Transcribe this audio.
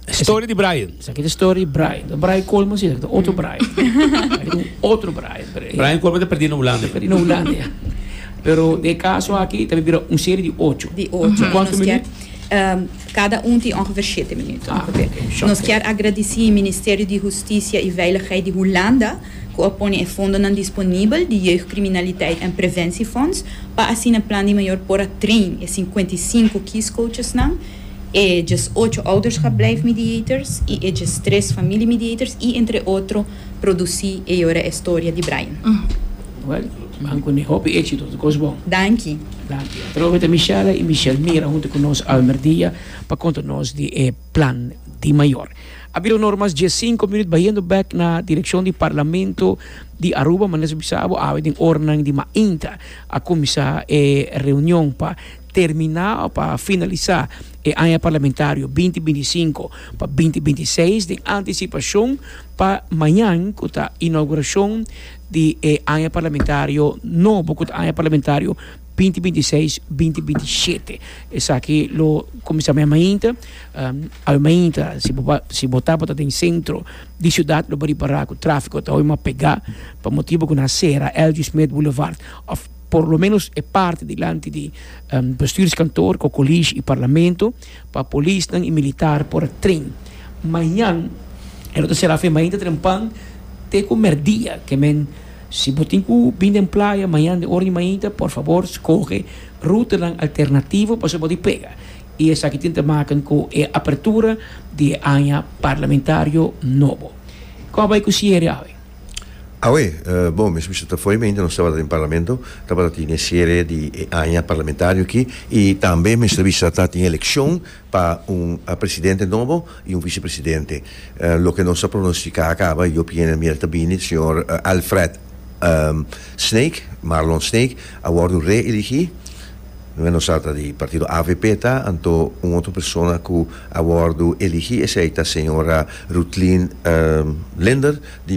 Story di Brian. Esaki ta story Brian. No Brian Colmo si, ta otro Brian. otro Brian. Brian Colmo ta perdi na Hulanda. Perdi na Hulanda, ya. Pero de caso aki, ta bira un serie di ocho. Di ocho. Quanto minuto? Um, cada un tin ongeveer shete minuto. Ah, okay. Nos kier agradeci Ministerio di Husticia y Veiligheid di Hulanda, ku a pone e fondonan disponibel di Jeugdcriminaliteit en Preventiefonds pa asina Plan di Mayor por a train e sinkuenta i sinku kiescoachesnan, e djes ocho ouderschapblijf mediators i e djes tres familiemediators i entre otro produci e yora e storia di Brian. Well, Ban cu ni hopi éxito ta cos bon. Danki. Danki. Atrobe ta Michelle i Michelle Mira hunto cu nos Almer Dia pa conta nos di e. plan di mayor. A bira un ora mas dje sinku minut bayendo bek na direkshon di Parlamento di Aruba, manera su bisa abo awe den oranan di mainta a kuminsá e reunion pa terminá o pa finalisá e aña parlamentario binti binti sinku pa binti binti seis den antisipashon pa mañan ku ta inaugurashon di e aña parlamentario nobo ku ta aña parlamentario binti binti seis binti binti shete esaki lo kuminsá mei mainta awe mainta si bo ba si bo ta bo ta den sentro di siudat lo bo ripará ku tráfiko ta hopi mas pegá pa motibu ku nan a sera L. G. Smith Boulevard òf por lo ménos e parti dilanti di bestuurskantoor kokolish i parlamento pa polisnan i militar por a tren mañan e lo ta será fin mainta trempan te ku mèrdia ke men Si bo tin ku bin den playa mañan den ora di mainta, por fabor skohe rutanan alternativo pa segun di pega. I esaki tin ta maken ku e apertura di e aña parlamentario nobo. Kon a bai ku siere awe? Awe, bon, mesmu si ta fo'i mainta nos tabata den parlamento, tabata tin e siere di e aña parlamentario aki i tambe mester bisa ta tin elekshon pa un presidente nobo y un vicepresidente. Loke nos a pronostica a caba y yo piensa mier ta bini, señor Alfred Snake, Marlon Snake, a wordo reeligi, no nos a ta di partido avp ta, anto un otro persona cu a wordo eligi esey ta señora Ruthlin Linder di.